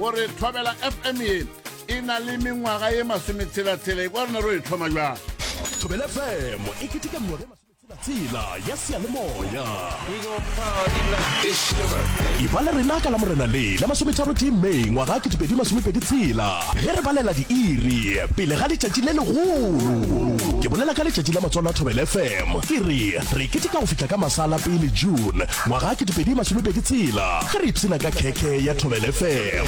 o re tlhobela fm ye e na le mengwaga ye masometshela-tshela e kwa rena ro e tlhoma jwang thobela fm e keteka mengwaga ye tshela ya seyalemoya e ba le rena ka la morena le la masometharo tee may ngwaga ke dipedi masomepedi tshela ge re balela diiri pele ga letšatši le legolo ke bolela ka letšatši la matswalo a thobel fm ke re re kete ka go fitlha ka masala pele june Ngwaga ke dipedi masomepedi tshela ge re ipshina ka khekhe ya Thobele FM.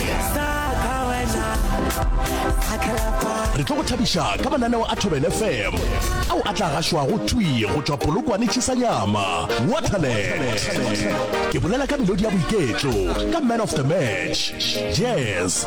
Re tlo go thabiša ka mananeo a Thobele FM ao a tla gašwago thwi go tšwa Polokwane Tšhisanyama, Waterland. Ke bolela ka melodi ya boiketlo, ka man of the match, jazz,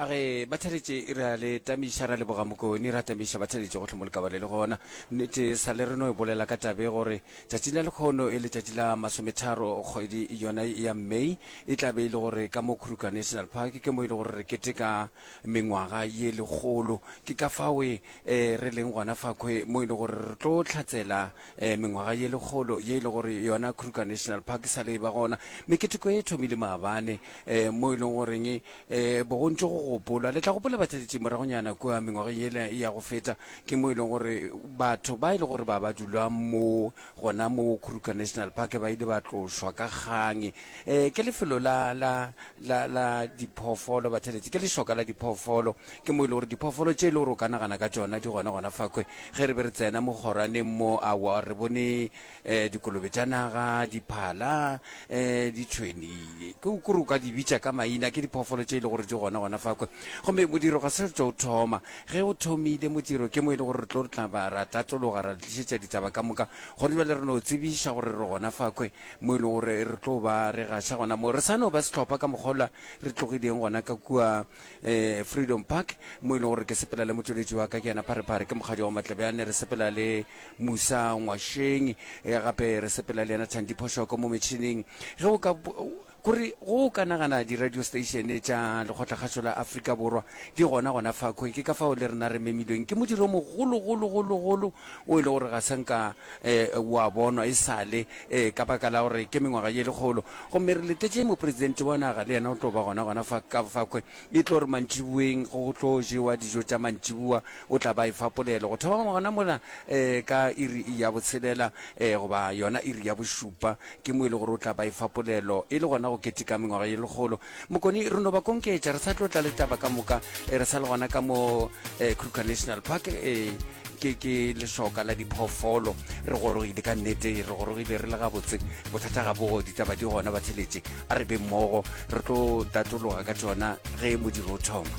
A re, Ba theletše e re a le tamiša, ra leboga Mokoni, ra tamiša ba theletše gohle mo lekabale le gona. Nnete e sa le re no e bolela ka tabe gore tšatšing la lekgono e letšatši la masometharo kgwedi yona ya May e tla be e le gore ka mo Kruger National Park ke mo e le gore re keteka mengwaga ye lekgolo. Ke ka fawe e re leng gona fakhwe mo e le gore re tlo tlhatsela e mengwaga ye lekgolo ye e le gore yona Kruger National Park e sa le e ba gona. Meketeko e thomile maabane e mo e leng goreng eh bogontši go gopolwa le tla gopola batlaleletšing moragonyana kua mengwageng yela ya go feta ke mo e leng gore batho ba e le gore ba ba dula mo gona mo khuruka national park ba ile ba tlošwa ka kgang um ke lefelo la la la la diphoofolo batlaleletši ke lešoka la diphoofolo ke mo e le gore diphoofolo tše e le gore o ka nagana ka tšona di gona gona fakwe ge re be re tsena mo kgorwaneng mo awa re bone eh, dikolobe tša naga diphala eh, ditšhweni ke o kore o ka di bitša ka maina ke diphoofolo tše e le gore di gona gona fa kwe gomme modiro ga se re tlo o thoma ge o thomile modiro ke mo e le gore re tlo re tla ba ra tlatologa ra tlišetša ditaba ka moka gone bjale re no tsebiša gore re gona fa kwe mo e le gore re tlo ba re gaša gona mo re sa no ba setlhopha ka mokgolwa re tlogileng gona ka kua eh, freedom park mo e leng gore ke sepela le motsweletši wa ka ke yena pharephare ke mokgadi wa matlebjane re sepela le musa ngwašeng eh, gape re sepela le yena thandi phošoko mo metšhineng ge o ka kore go ka nagana di-radio station tša lekgotlakgašo la aforika borwa di gona gona fakhwe ke ka fao le rena re memilweng ke modiro mogologologologolo wo e le gore ga sa nka wa bonwa e sale ka baka la gore ke mengwaga ye lekgolo. Gomme re letetše Mopresidente wa naga, le yena o tlo ba gona gona fa ka fakhwe. E tlo re mantšiboeng go tlo jewa dijo tša mantšiboa, o tla ba efa polelo go thoma gona mola ka iri ya botshelela goba yona iri ya bošupa. Ke mo e le gore o tla ba efa polelo e le gona go keteka mengwaga ye lekgolo Mokoni, re no ba konketša, re sa tlo tla le taba ka moka, e re sa le gona ka mo eh, Kruger National Park eh, ke ke lešoka la diphoofolo re gorogile ka nnete re gorogile re le gabotse bothata ga bogo ditaba di gona ba theletše a re be mmogo re tlo tatologa ka tsona ge modiro o thoma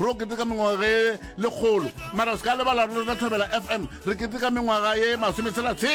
Ro keteka mengwaga ye lekgolo, mara o se ka lebala re lota Thabela FM, re keteka mengwaga ye masome tshela tshela.